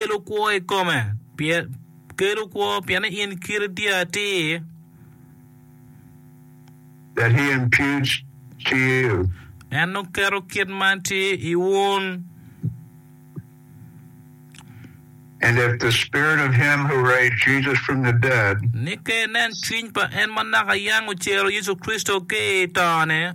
kelo kwo i kome, kelo kwo pienne in kiri tye atir. That he imputes to you. En nongo keto kit ma tye i wun. And if the spirit of him who raised Jesus from the dead. Ni ka inen cwiny pa en ma naka yam ocero Yecu Kricito ki i tone.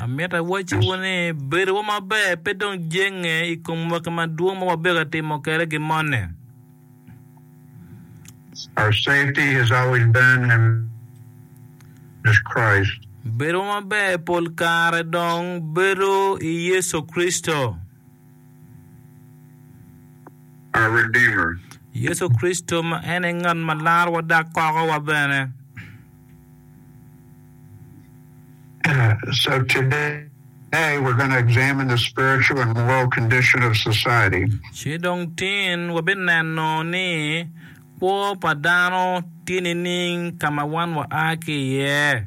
Amito awacciwu ni, bedowa maber pe dong jenge i kom mwaki madwong ma wabedo ka timo kwede gin moni. Bedowa maber pol kare dong bedo i Yecu Kricito. Yecu Kricito ma en aye ngat ma larowa dok kokowa bene. Ci dong tin wabineno ni kwo pa dano tye nining ka ma wan waa ki iye.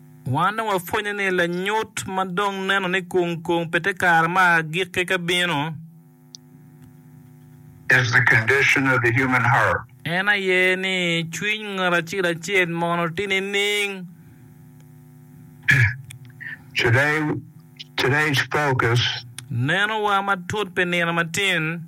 Wan dong wapwenyo ni lanyut ma dong neno ni kung kung pe te kare ma agikke ka bino. Is the condition of the human heart. En aye ni cwiny ngat acel acel mono ti nining? Today, today's focus. Neno wa matut pi nino matin.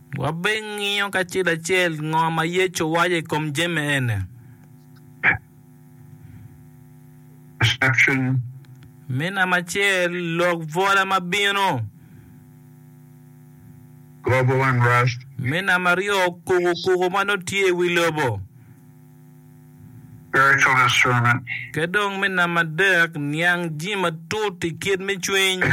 Wabinngiyo kacel acel ngo ma Yecu owaco i kom jami eni. Me namba acel, lok bwola ma bino. Me namba aryo, kuku kuku ma nongo tye i wi lobo. Ki dong me namba adek, niang jami matut i kit me cwiny.